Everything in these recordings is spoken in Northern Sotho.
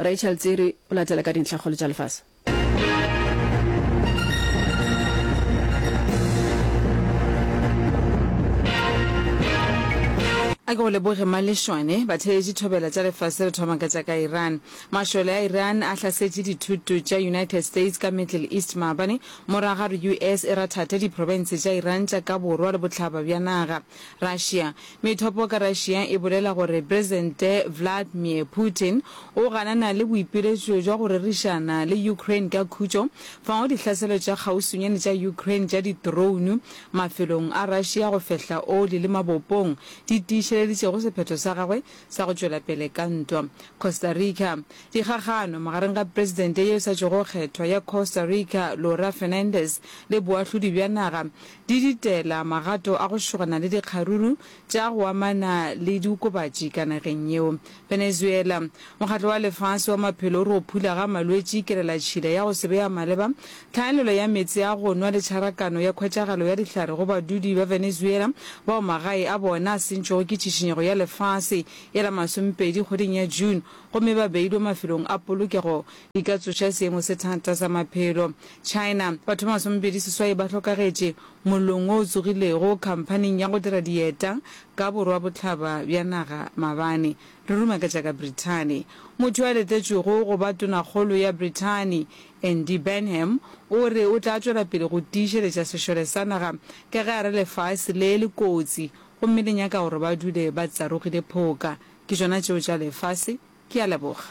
Rachel Tsiri o latela ka dintlhakgolo tša lefase. A ke go leboge Malešwane. Batheetši thobela tša lefase re thoma ka tša ka Iran. Mašole a Iran a hlasetše dithuto tša United States ka Middle East maabane morago ga gore US e rathathe diprofense tša Iran tša ka borwa le bohlaba bja naga. Russia. Methopo ka Russia e bolela gore Presidente Vladmir Putin o ganana le boipiletšo jwa go rerišana le Ukraine ka khutšo fago dihlaselo tša kgauswinyane tša Ukraine tša ditrounu mafelong a Russia go fehla oli le mabopong di tiišeleditšego sephetho sa gagwe sa go tšwela pele ka ntwa Costa Rica. Dikgagano magareng ga Presidente yo sa tšwego kgethwa ya Costa Rica Laura Fernandez le boahlodi bja naga di ditela magato a go šogana le dikgaruru tša go amana le diokobatši ka nageng yeo. Venezuela, Mokgatlo wa Lefase wa Maphelo o re go phula ga malwetši, kelelatšhila ya go se be ya maleba, tlhaelelo ya meetse a go nwa le tšharakano ya khwetšagalo ya dihlare go badudi ba Venezuela bao magae a bona a sentšwego ke tšhišinyego ya lefase ya la masomepedi kgweding ya June gomme ba beilwe mafelong a polokego Di ka tsoša seemo se thata sa maphelo. China, Batho ba masomepedi seswai ba hlokagetše mollong wo o tsogilego khamphaning ya go dira dieta ka borwabohlaba bja naga mabane. Re rumaketša ka Brithani. Motho yo a letetšwego go ba tonakgolo ya Brithani, Andy Burnham, o re o tla tšwela pele go tiišeletša sešole sa naga ka ge a re lefase le le kotsi gomme le nyaka gore ba dule ba tsarogile phoka. Ke tšona tšeo tša lefase. Ke a leboga.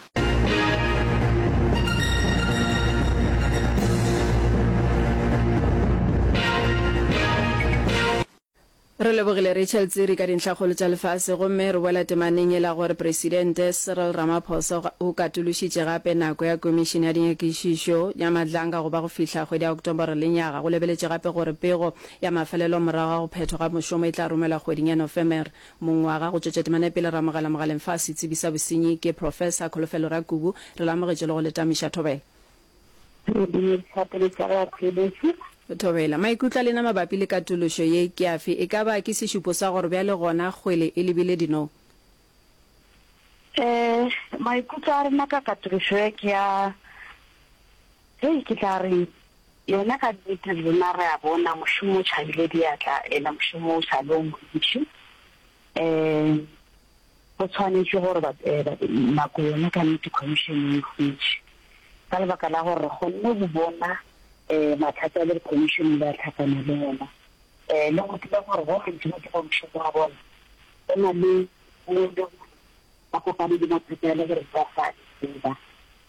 Re lebogile Rachel Tsiri ka dintlhakgolo tša lefase gomme re boela temaneng yela gore Presidente Cyril Ramaphosa o katološitše gape nako ya Komišene ya Dinyakišišo ya Madlanga go ba go fihla kgwedi ya Ocktobore le nyaga. Go lebeletše gape gore pego ya mafelelo morago ga go phethwa ga mošomo e tla romelwa kgweding ya Nofemere. Mongwaga go tšwetša temana ya pele, Ramogela Mogaleng fa setsebi sa bosenyi ke Professor Kholofelo Rakubu, re lamogetše le go le tamiša. Thobela. Re bile dikgopolo tša go ya Thobela. Thobela. Maikutlo a lena mabapi le katološo ye ke afe? E ka ba ke sešupo sa gore bjale gona kgwele e lebile dinong? Ee, maikutlo a rena ka katološo ye ke a. Hei, ke tla re, yena ka nnete rena re a bona mošomo o tšhabile diatla, ena mošomo o sa le o montši. Ee, go tshwanetše gore ba, ba, nako yona ka nnete Khomišene e hwetše. Ka lebaka la gore re kgonne go bona, ee, mathata a le Khomišene ba tlhakana le ona, ee, le go tseba gore ba bantši ba dira mošomo wa bona go na le, ba kopane le mathata a le gore ba sa a tseba.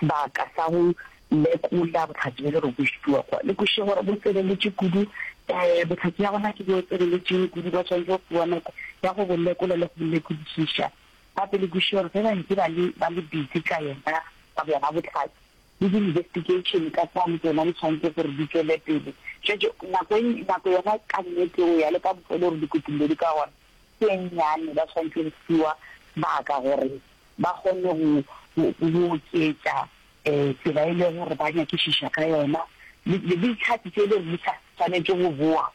sebaka sa go lekola bohlatse bjo le re bo šitiwa kwa. Le kwešiše gore bo tseleletše kudu. Um bohlatse bja gona ke bjo tseleletšeng kudu, ba swanetše go fiwa nako ya go bo lekola le go bo lekodišiša. Gape le kwešiše gore ge ba ntše ba le ba le busy ka yona ka bjona bohlatse, le di-investigation ka kwano tsona di tshwanetse gore di tšwele pele. Šetše nako e, nako yona ka nnete go ya le ka bofelo gore dikutullo di ka gona ke e nnyane, ba swanetše go fiwa sebaka gore ba kgone go go oketša um tsela e le gore ba nyakišiša ka yona, le le dihlatse tše e le gore di sa swanetše go boa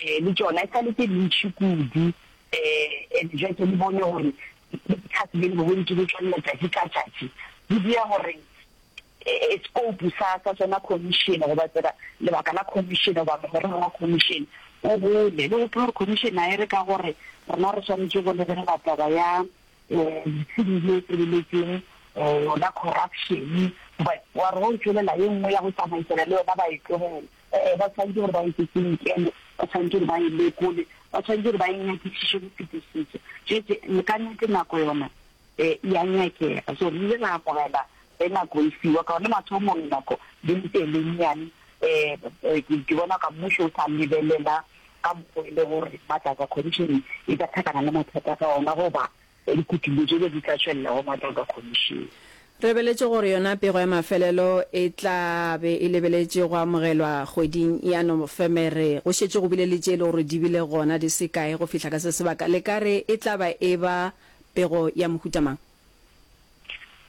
um le tšona e sa le tše dintši kudu um and jwa ke le bone gore dihlatse di bego di ntše di tšwelela tšatši ka tšatši di dira gore scope sa sa tsona commission goba tsela lebaka la commission goba mogorero wa commission o gole le gope gore commission a e re ka gore rena re swanetše go lebelela taba ya Letshipi le tebeletsweng lona corruption, but wa re go tšwelela ye nngwe ya go tsamaisana le yona ba e tlogele. Ee, ba tshwanetse gore ba eketse nkele, ba tshwanetse gore ba e lekole, ba tshwanetse gore ba e nyakišiše go fetisiša. Tšwetše le ka nnete nako yona e a nyakega, so re ile ra amogela ge nako e fiwa ka gona mathomong nako di le tee le nnyane. Ke bona ka mmušo o sa lebelela ka mokgo e le gore Matlakwa Khomišene e ka thakana le mathata ka ona goba dikutullo tše be di tla tšwelela go Matlakwa Khomišene. Rebeletše gore yona pego ya mafelelo e tla be e lebeletše go amogelwa kgweding ya Nofemere. Go šetše go bile le tše e le gore di bile gona di se kae go fihla ka se sebaka. Le ka re e tla ba e ba pego ya mohuta mang?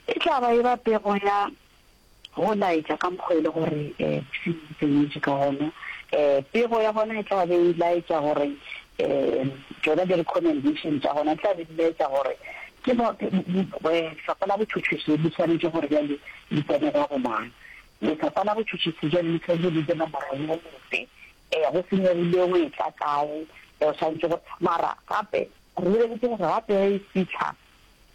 E tla ba e ba pego ya. Go laetša ka mokgo e le gore se tseietšwe ka gona, pego ya gona e tla be e laetša gore tšona di-recommendation tša gona di tla be di laetša gore ke Lefapha la Botšhotšhisi le swanetše gore bjale le tsene ka go mang. Lefapha la Botšhotšhisi bjale le swanetše le dire nomoro ye motse, go se nyogile o e tla kae, o swanetše gore. Mara gape re lebeletse gore ga pego e fitlha,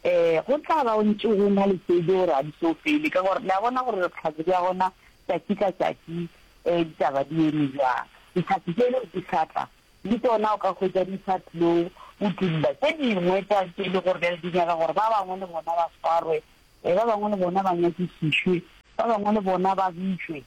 Ee, go tla ba go ntše go na le tše di gore ga di tlo fele, ka gore le a bona gore re tlhatse bja gona tšatši ka tšatši, um ditaba di eme bjang. Dihlatse tšele di sa tla, le tšona o ka hwetša di sa tlo utolla tše dingwe tša tše e le gore bjale di nyaka gore ba bangwe le bona ba swarwe, um ba bangwe le bona ba nyakišišwe, ba bangwe le bona ba bitšwe.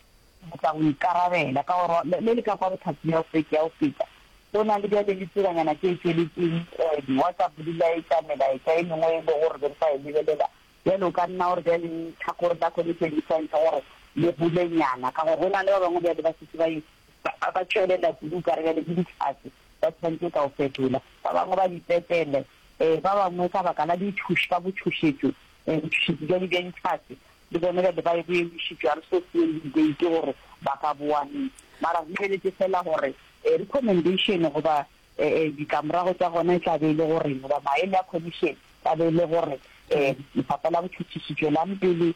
Re tla go ikarabela, ka gore le, le le ka kwa bothati bja go fetša, go feta. Go na le bjale le tsebanyana tše tšweletšeng, eh, di-WhatsApp, dilaetša, melaetša e mengwe e lego gore be re sa e lebelela. Bjale o ka nna o re bjale lehlakore la Connection le swantšha gore le golenyana, ka gore go na le ba bangwe bjale ba šetše ba e, ba, ba tšwelela kudu okare bjale ke dihlatse, ba swantše ka go fetola. Ba bangwe ba Bipetele, eh, ba bangwe ka baka la ditšhoš-, ka botšhošetšo, eh, botšhošetši bjale bja dihlatse, Le bone ba be ba ebo emišitšwe, a re se se yeng debate gore ba ka boa neng. Mara re lebeletše feela gore recommendation goba ditlamorago tša gona e tla be e le goreng goba maele a commission tla be e le gore Lefapha la Botšhotšhisi tšwelang pele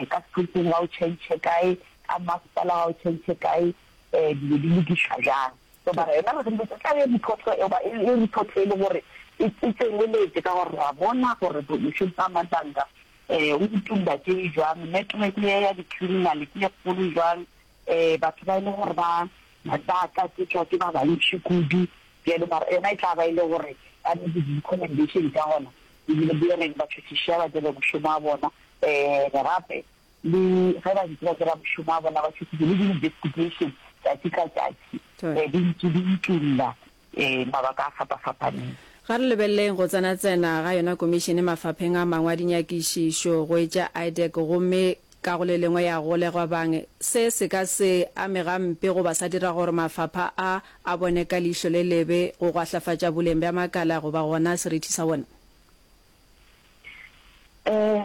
ka Sepoleseng ga o change kae, ka Mmasepala ga o change kae, dilo di lokišwa bjang. So mara yona re lebeletše e tla be report e goba e report e le gore e tseneletše ka gore re a bona gore bo Moshoeshoe ba Mandanka Eh, o ditulla tše jwang? Network ye ya di-criminal ke e kgolo jwang? Eh, batho ba e le gore ba ba ka tsetšwa ke ba bantši kudu bjalo, mara yona e tla ba e le gore ba ne le di-recommendation tša gona ebile di reng batho sešia ba tsebe mošomo wa bona. Eh, gape le ge ba ntse ba tseba mošomo wa bona ba tšhositse le di-investigation tšatši ka tšatši, eh, di ntse di itulla. ee, mabaka a fapa-fapaneng. Ga re lebeleleng go tsena-tsena ga yona komišene mafapheng a mangwe a dinyakišišo, go etša IDEC gomme ka go le lengwe ya golegwa bang. Se se ka se ame gampe goba sa dira gore mafapha a a bone ka leihlo le lebe go gwahlafatša boleng bja makala goba gona serithi sa wona. Ee,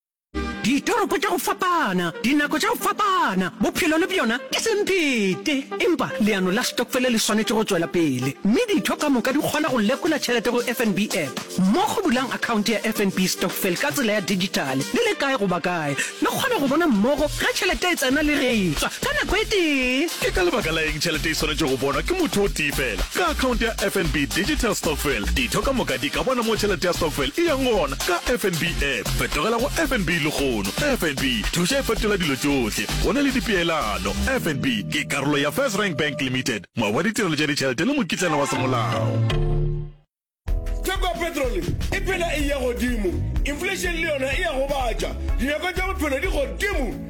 Ditoropo tša go fapana, dinako tša go fapana, bophelo le bjona ke semphete. Empa leano la stokfele le swanetše go tšwela pele, mme ditho ka moka di kgona go lekola tšhelete go FNB app. Mmogo bulang akhaonte ya FNB Stokfel ka tsela ya dijithale le le kae goba kae. Le kgona go bona mmogo ge tšhelete e tsena le ge e tšwa ka nako e tee. Ke ka lebaka la eng tšhelete e swanetše go bonwa ke motho o tee feela? Ka akhaonte ya FNB Digital Stokfel, ditho ka moka di ka bona moo tšhelete ya stokfel e yang gona. Ka FNB app, fetogela go FNB lehono. FNB, thuša e fetola dilo tšohle. Go na le dipeelano. FNB ke karolo ya First Rank Bank Limited, moabi wa ditirelo tša ditšhelete le mokitlana wa semolao. Theko ya petrole e phela e eya godimo, inflation le yona e a gobatša, dinako tša bophelo di godimo.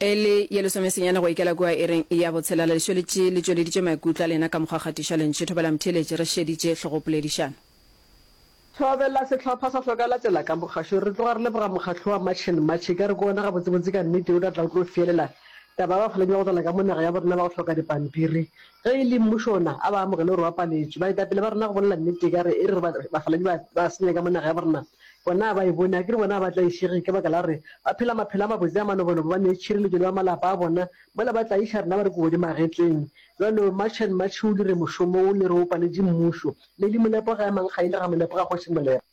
E le ye lesomesenyane go ikela kua ireng ya botshelela, lešweletši le tšweleditše maikutlo a lena ka mokgwa kgatišo. Le ntšhetho bela motheeletši, re šeditše hlogopoledišano. Thobela sehlopha sa Hloka Latela ka Mogašo. Re tloga re leboga Mokgatlo wa March and March, e ka re ke wona gabotsebotse ka nnete o tla tla o tlo feelela taba ya ba fo lenywa go tlala ka mo naga ya bo rena ba go hloka dipampiri. Ge e le mmušo ona, a ba amogele gore o apaletšwe. Baetapele ba rena go bolela nnete e ka re e re re bafaladi ba ba senya ka mo naga ya bo rena, bona a ba e bone, a ke re bona a ba tlaišege ka baka la gore ba phela maphelo a mabotse a manobolobo, ba nee tšhireletšo le ba malapa a bona, mola ba tlaiša rena ba re kodi magetleng. Bjalo March and March o dire mošomo wo le re o paletše mmušo. Lady Molepo ga ya Mankga e le ga Molepo ga kgoši Molepo.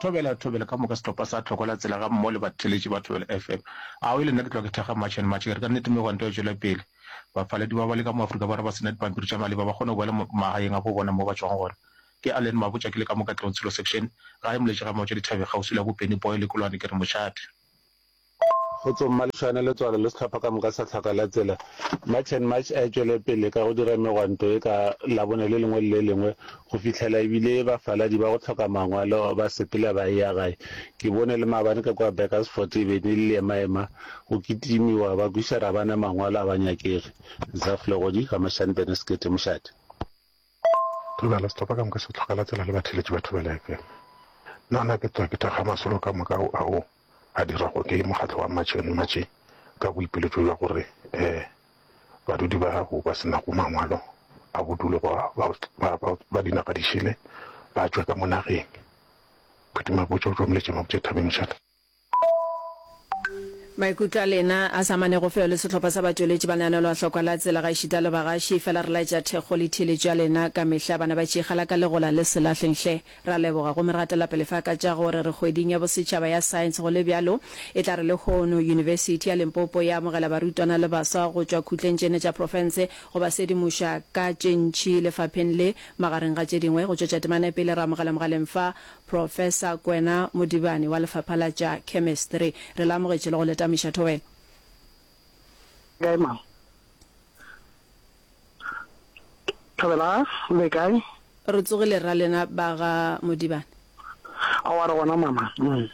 Thobela, Thobela, ka moka sehlopha sa Tlhoko la Tsela gammogo le batheeletši ba Thobela FM. Aowi, le nna ke tloga ke thekga March and March, ke re ka nnete megwanto ya tšwela pele. Bafaladi ba ba leka mo Afrika Borwa ba se na dipampiri tša maleba ba kgone go boela magaeng a bo bona moo ba tšwago gona. Ke Allen Mabotja, ke le ka mo Katlehong Tshilo Section, gae Moletše Gamaotša Dithabeng, kgauswi le Abopeni Boy le Kolwane, ke re mošate. Kgotso Mma Lešwane, Letswalo le Sehlopha ka moka sa Tlhaka la Tsela, March and March a e tšwele pele ka go dira megwanto e ka Labone le lengwe le le lengwe go fihlela e bile bafaladi ba go tlhoka mangwalo ba sepela ba eya gae. Ke bone le maabane ka kua Burkersfort e be ne le ema-ema go kitimiwa ba kwiša Rabane mangwalo a ba nyakege. Zaf Legodi, Gamashane Bene Sekete, Mošate. Re na le sehlopha ka moka se hloka la tsela le batheletši ba Thobela FM. Na na ke tla ke thakga masolo ka moka ao a diragwa ke mokgatlo wa Matšheng Matšhe ka boipiletšo bja gore ee badudi bao ba se nago mangwalo a bodulo ba dinaga di šele ba tšwe ka mo nageng? Phethimabotšo o tšomoletše Mabotšethabeng Mashata. Maikutlo a lena a sa amanego feo le sehlopha sa batšweletši ba lenaneolo a hlokwa la tsela gaešita le bagaši. Fela re laetša thekgo le theeletšo ya lena ka mehla. Bana ba Tšikgala ka legola le Selahleng hle. Re a leboga gomme re gatela pele fa ka tša go re re kgweding ya bosetšhaba ya Science go le bjalo e tla re lehono Yunibesithi ya Limpopo e amogela barutwana le baswa go tšwa khutleng tše nne tša profense go ba sedimoša ka tše ntši lefapheng le. Magareng ga tše dingwe go tšwetša temana pele re amogela mogaleng fa Professor Kwena Modibane wa Lefapha la tša Chemistry, re le amogetše le go le tamiša thobela. Le kae ma? Thobela, le kae? Re tsogile ra lena ba ga Modibane. Aowa re gona mama. Mm.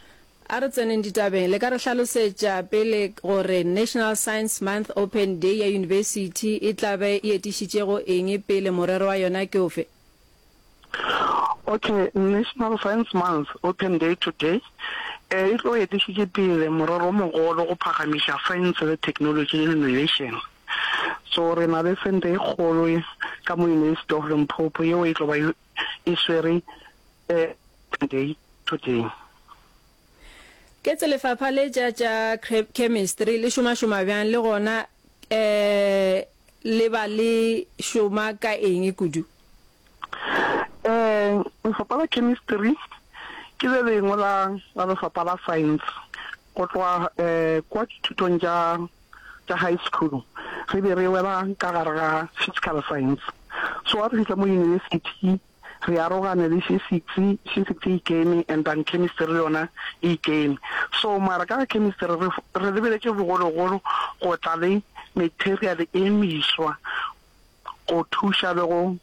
A re tseneng ditabeng, le ka re hlalosetša pele gore National Science Month Open Day ya yunibesithi e tla be e etišitšego eng pele, morero wa yona ke ofe? Okay, National Science Month, Open Day Today, e tlo etišitše pele morero o mogolo go phagamiša saense le theknolotši le innovation. So re na le sente e kgolo ka mo University of Limpopo yeo e tlo ba e swere Open Day Today. Ke tse lefapha le tša tša chemistry le šomašoma bjang le gona um Le ba le šoma ka eng kudu? Um, lefapha la chemistry ke le lengwe la la lefapha la science. Go tloga um kwa dithutong tša tša high school re be re wela ka gare ga physical science, so ga re fihla mo university, re arogane le physics, physics e ikeme and then chemistry le yona e ikeme. So mara ka ga chemistry re re lebeletše bogologolo go tla le material e meswa go thuša le go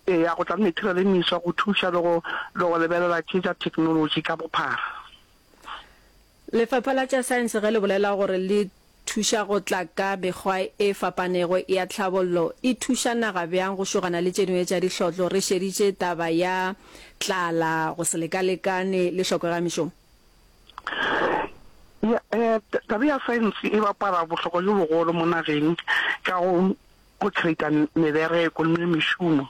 eya go tla le material e meswa go thuša le go le go lebelela tše tša technology ka bophara. Lefapha la tša Saense ge le bolela gore le thuša go tla ka mekgwa e fapanego ya tlhabollo, e thuša naga bjang go šogana le tše dingwe tša dihlotlo, re šeditše taba ya tlala, go se lekalekane le hloko ya mešomo. Ya, um taba ya saense e bapala bohlokwa bjo bogolo mo nageng ka go go creator mebereko le mešomo.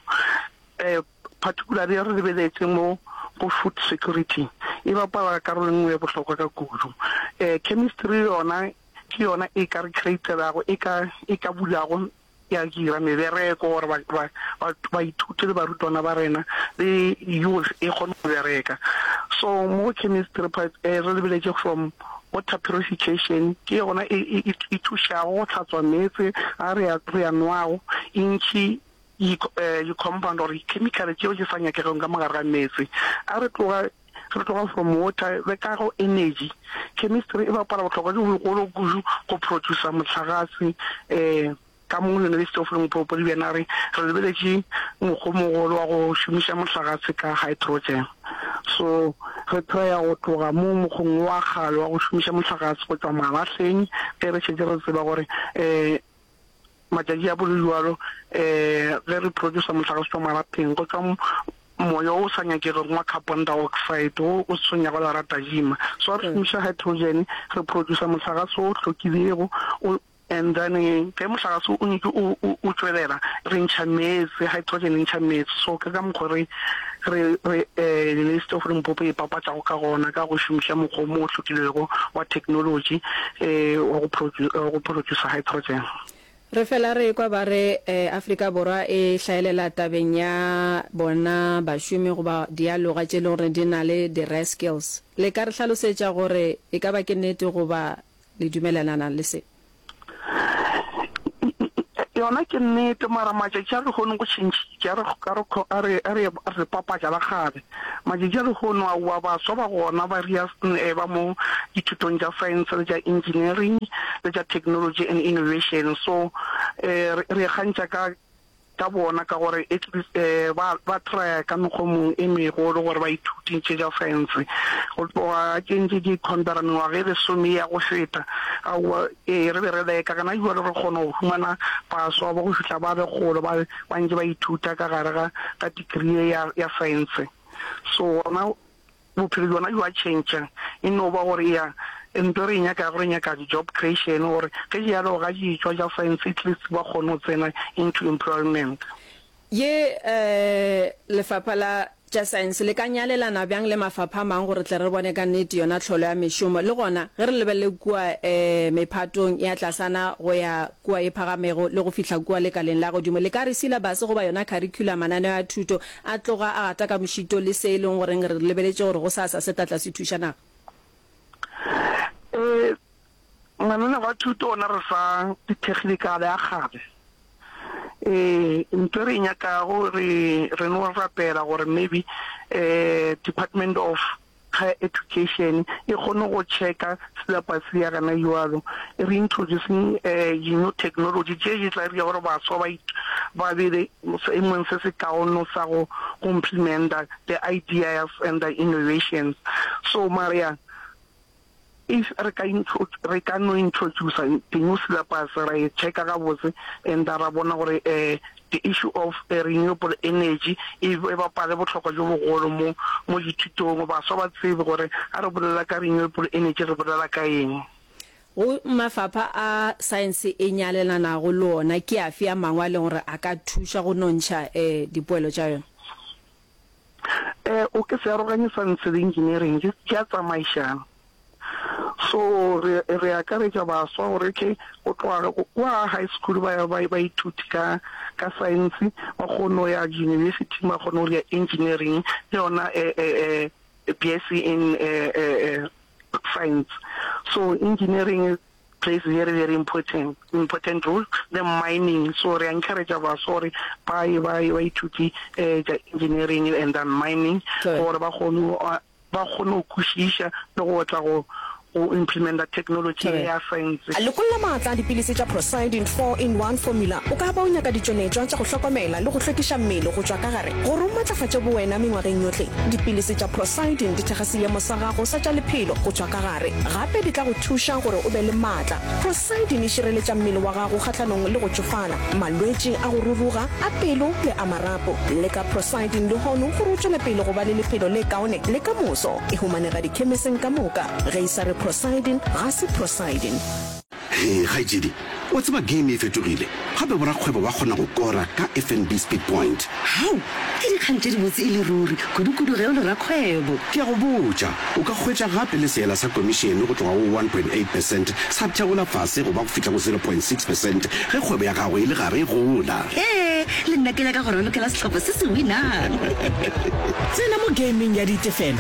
Um particularly re lebeletse mo go food security e bapala karolo e nngwe ya bohlokwa ka kudu. Eh, chemistry yona ke yona e ka re createlago e ka e ka bulago ya dira mebereko gore ba ba ba ba ithute le barutwana ba rena le youth e kgone go bereka so mo chemistry part eh, re lebeletse from water purification ke yona e e- e- e thušago go hlatswa meetse a re a re a nwago intšhi Di-compound or di-chemical tšeo di sa nyakegego ka mogare ga meetse. A re tloga re tloga from water re ka go energy. Chemistry e bapala bohlokwa jo bogolo kudu go producer mohlagase ka mo University of Limpopo. Di bjana re re lebeletše mokgwa o mogolo wa go šomiša mohlagase ka hydrogen. So re traya go tloga mo mokgweng wa kgale wa go šomiša mohlagase go tšwa malahleng ge re šetše re tseba gore. Matšatši a bolelwalo ge re producer mohlagase tšwa marapeng go tšwa moya o sa nyakegego wa carbon dioxide wo o se tshwenyago le ra tajima. So ga re šomiša hydrogen re producer mohlagase o hlokilego o and then ge mohlagase o nyetše o tšwelela re ntšha meetse, hydrogen e ntšha meetse so ke ka mokgo re Re, re, ee, Lelesi Tofo Limpopo e ipapatšago ka gona ka go šomiša mokgwa o mo o hlokilwego wa theknolotši, ee, wa go produ-, wa go producer hydrogen. Re fela re ekwa ba re, ee, Afrika Borwa e hlaelela tabeng ya bona bašomi goba dialoga tše e lego gore di na le di-re-skills. Le ka re hlalosetša gore e ka ba ke nnete goba? Le dumelelana le se? Yona ke nnete, mara matšatši a lehono go tšhentšhitše. A re, a re, a re, a re, a re papatša la kgale. Matšatši a lehono, aowa, baswa ba gona ba ria e ba mo dithutong tša science le tša engineering le tša technology and innovation. So re, re e kgantšha ka. ka bona ka gore ba ba traya ka mekgwa mongwe e megolo gore ba ithuti ntše ja fense go tloga a tšentše di contara mengwaga e lesome ya go feta aowa ee re be re leka gana jwale re kgona go humana paswa ba go fihla ba le kgolo ba ba ntše ba ithuta ka gare ga ga degree ya ya fense so gona Bophelo bjona bjo a tšhentšha, e no ba gore ya nto re e nyakago, re nyaka di-job creation gore ge di yalo ga di etšwa tša science at least ba kgone go tsena into employment. Ye Lefapha la tša Science le ka nyalelana bjang le mafapha a mang gore tle re bone ka nnete yona tlholo ya mešomo le gona ge re lebelele kua mephatong ya tlasana go ya kua e phagamego le go fihla kua lekaleng la godimo. Le ka re silabase goba yona kharikhulama, mananeo a thuto, a tloga a gata ka mošito le se e leng goreng re lebeletše gore gosasa se tla tla se thuša naga. Ee, mananeo a thuto ona re fa dithekhinikale a kgale. Ee, ntho e re e nyakago re re no rapela gore maybe Department of Higher Education e kgone go checka syllabus ya rena jwalo e re introducing di new technology tše di tla dira gore baswa ba ba be le seemong se se kaono sa go complementa the ideas and the innovations so mara If re ka introduce, re ka no introducer the new syllabus, ra e checker gabotse and tha ra bona gore the issue of renewable energy e bapale bohlokwa jo bogolo mo mo dithutong, baswa ba tsebe gore ha re bolela ka renewable energy re bolela ka eng. Go mafapha a science e nyalelanago le ona ke afe a mangwe a leng gore a ka thuša go nontšha dipoelo tša yona? um o ke se aroganye sa ntse le engineering di a tsamaišana. So re re akaretša baswa gore okay go tloga kwa high school ba ya ba ba ithuti ka ka science ba kgone go ya university ba kgone go ya engineering le yona BSc in science so engineering plays very very important important role the mining so re encourage baso gore ba ye ba ye ba ithuti eh ja engineering and then mining gore ba kgone ba kgone go kwešiša le go tla go go implementa technology ya science lekolla maatla a dipilisi tša prosidin 4 in 1 formula o ka ba o nyaka ditšweletšwa tša go hlokomela le go hlwekiša mmele go tšwa ka gare gore o matlafatše bowena mengwageng yohle dipilisi tša prosidin di thekga seemo sa gago sa tša lephelo go tšwa Gare gape di tla go thuša gore o be le matla. Prosidini e šireletša mmele wa gago kgahlanong le go tšofala, malwetši a go ruruga, a pelo le a marapo. Leka Prosidini lehono gore o tšwele pele go ba le lephelo le kaone le ka moso. E humanega dikhemeseng ka moka. Ge e sa re Prosidini, ga se Prosidini. Hee kgaetšedi, wa tseba game e fetogile, gape borakgwebo ba kgona go kora ka FNB Speed Point. Hau! Ke dikgang tše dibotse e le ruri, kudukudu ge o le rakgwebo. Ke a go botša, o ka hwetša gape le seela sa komišene go tloga go one point eight percent sa theola fase go ba go fihla go zero point six percent ge kgwebo ya gago e le gare e gola. Hee! Le nna ke nyaka go ralokela sehlopha se se winang. Tsena mo gameng ya ditefelo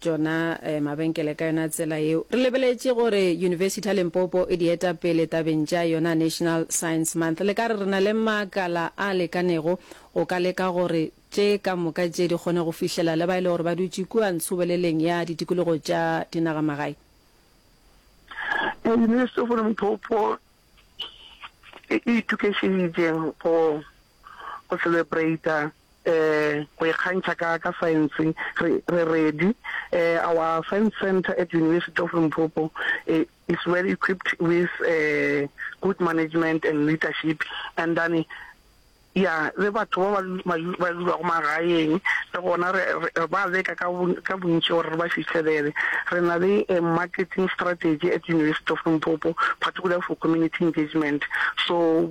tšona mabenkele ka yona tsela yeo. Re lebeletše gore Yunibesithi ya Limpopo e di eta pele tabeng tša yona National Science Month. Le ka re re na le makala a lekanego go ka leka gore tše ka moka tše di kgone go fihlela le ba e le gore ba dutše kua ntshoboleleng ya ditikologo tša dinagamagae. Yunibesithi of Limpopo e itokišeditše go go celebrate-a go ikgantšha ka ka science re re ready. Our science centre at University of Limpopo is well equipped with good management and leadership and then ya le batho ba ba ba dulago magaeng le gona re re ba leka ka ka bontši gore re ba fihlelele. Re na le a marketing strategy at University of Limpopo particularly for community engagement so.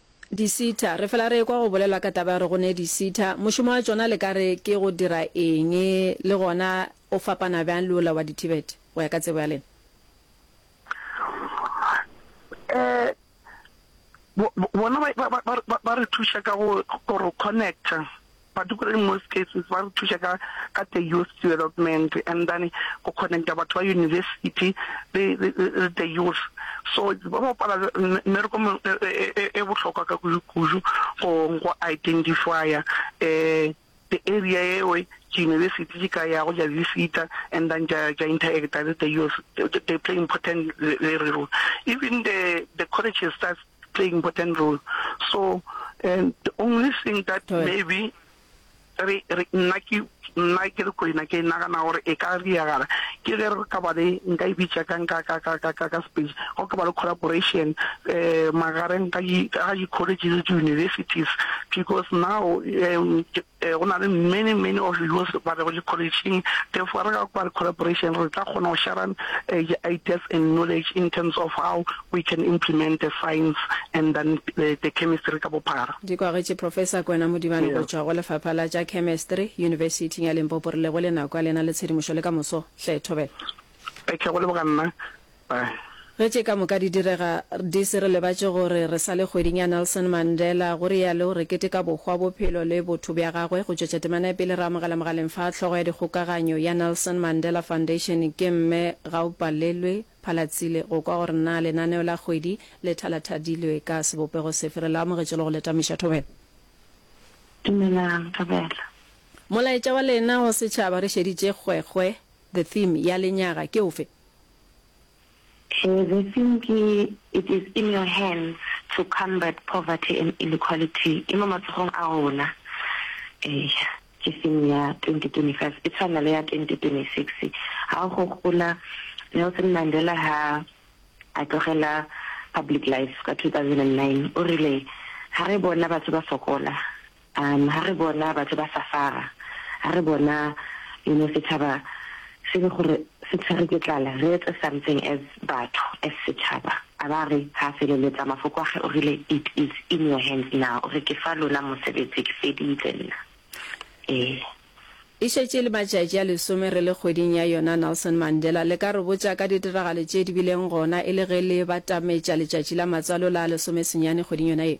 Disita. Re fela re ekwa go bolelwa ka taba ya gore go ne disita. Mošomo wa tšona le ka re ke go dira eng, le gona o fapana bjang le ola wa di-TVET, go ya ka tsebo ya lena? Ee, bona ba re thuša ka go re connecta. Batho ko in most cases ba re thuša ka ka the youth development and then go connecta batho ba university le le the youth so ba bapala mmereko e bohlokwa ka kudu kudu go go identifya um the area eo ke university ke ka ya go ja visita and then ja ja interact le the youth they play important role even the the colleges play important role so and the only thing that maybe re re nna ke nna ke re kwena ke nagana gore e ka diragala ke ge re ka ba le nka e bitša ka nka ka ka ka ka ka space go ka ba le collaboration um magareng ga ga di-colleges le di-universities because now um Ee, go na le many, many of us ba bego le college-ing, therefore re ka kwa le collaboration re tla kgona go sharan ideas and knowledge in terms of how we can implement the science and then the chemistry ka bophara. Di kwagetše Professor Kwena Modibane go tšwa go Lefapha la tša Chemistry Yunibesiting ya Limpopo. Re lebohile nako ya lena le tshedimošo le ka moso. Hle, Thobela. Ke a go leboga nna. Bye. Ge tše ka moka di direga, di se re lebatše gore re sa le kgweding ya Nelson Mandela, go rialo, re keteka bohwa, bophelo le botho bja gagwe. Go tšwetša temana ya pele re amogela mogaleng fa hlogo ya dikgokaganyo ya Nelson Mandela Foundation ke Mme Gaupalelwe Phalatsile go kwa gore na lenaneo la kgwedi le thalathadilwe ka sebopego sefe. Re le amogetše le go le tamiša thobela. Dumelang, Thobela. Molaetša wa lena go setšhaba re šeditše kgwekgwe, the theme, ya lenyaga ke ofe? He Zeseng ke It is in your hands to combat poverty and inequality e mo matsogong a rona. Eya, ke theme ya 2025 e tshwana le ya 2026. Ha o gopola Nelson Mandela ha a tlogela public life ka 2009 o rile ha re bona batho ba sokola A ha re bona batho ba safara, ha re bona you know sechaba se le gore se tshwere ke tlala, re etse something as batho, as sechaba. A ba re ha a feleletsa mafoko a ge o rile, it is in your hands now, o re ke fa lona mosebetsi, ke feditse nna. Ee. E šetše e le matšatši a lesome re le kgweding ya yona Nelson Mandela. Le ka re botša ka ditiragalo tše di bileng gona e le ge le batametša letšatši la matswalo la lesomesenyane kgweding yona ye?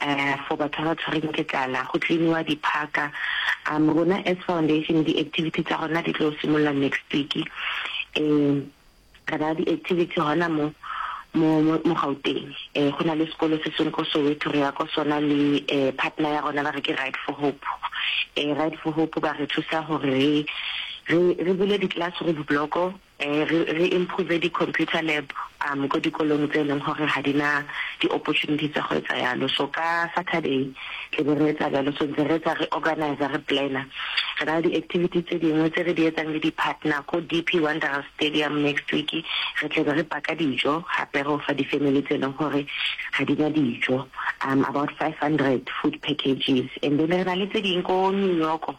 Ahh for batho ba ba tshwereng ke tlala go cleaniwa di park umm rona as foundation di activity tsa rona di tlo simolola next week um re ba di activity hona mo mo mo Gauteng eh go na le sekolo se seng ko Soweto re ya ko sona le eh partner ya rona ba re ke Ride for Hope eh Ride for Hope ba re thusa gore re re bule di classroom block Re, re improve di computer lab um ko dikolong tse eleng gore ga di na di opportunity tsa go etsa yalo. So ka Saturday tle be re etsa bjalo. So ntse re etsa re organiser, re planner. Re na le di activities tse dingwe tse re di etsang le di partner ko DP Wanderers Stadium next week. Re tle be re paka dijo gape ro fa di family tse eleng gore ga di na dijo, um about 500 food packages. And then re na le tse ding ko New York.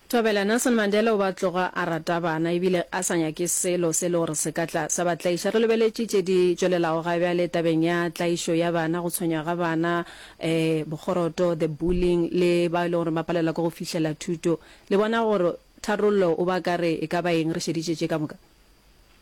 Thobela, Nelson Mandela o ba tloga a rata bana ebile a sa nyake selo se e le gore se ka tla sa ba tlaiša. Re lebeletše tše di tšwelelago ga bjale tabeng ya tlaišo ya bana, go tshwenywa ga bana, um bokgoroto, the bullying, le bao e lego gore ba palelwa ke go fihlela thuto. Le bona gore tharollo o ba ka re e ka ba eng re šeditše tše ka moka?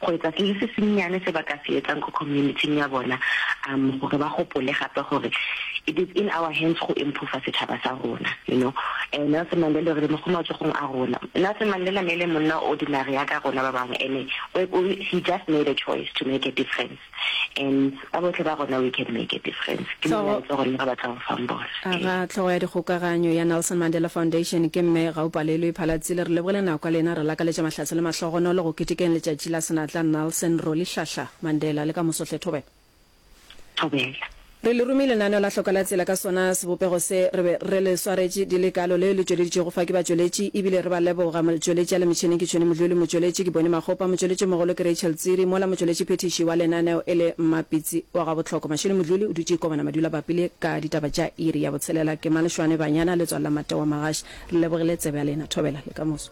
go etsa se le se sennyane se ba ka se etsang ko community-ing ya bona, um gore ba gopole gape gore it is in our hands go improver setšhaba sa rona. You know, um Nelson Mandela o rile mo go matsogong a rona. Nelson Mandela ne e le monna o ordinary yaka rona ba bangwe, ene he just made a choice to make a difference. and ka bohle ba rona we can make a difference ke molaetsa gore le ga ba tla go fang bona aga tlhogo ya dikgokaganyo ya nelson mandela foundation ke mme ga o palelwe phalatsile re lebogile nako ya lena re lakaletša mahlatse le mahlogonolo go ketekeng letšatši la senatla nelson rolihlahla mandela le ka mosohle thobela thobela Re le rumi lenaneo la hloko la tsela ka sona sebopego se re be re le swaretše di le kalo leo le tšweleditšwego fa ke batšweletši e bile re ba leboga, motšweletši a le metšhineng ke Tšhweni Modluli, motšweletši ke Boni Makgopa, motšweletšimogolo ke Rachel Tsiri, mola motšweletši phethiši wa lenaneo e le Mmapitsi wa Gabohloko. Mashele Modluli o dutše Kobana Madulabappi le ka ditaba tša iri ya botshelela ke Malešwane Banyana letswalo la Matewa Magaši. Re lebogile tsebe ya lena. Thobela le kamoso.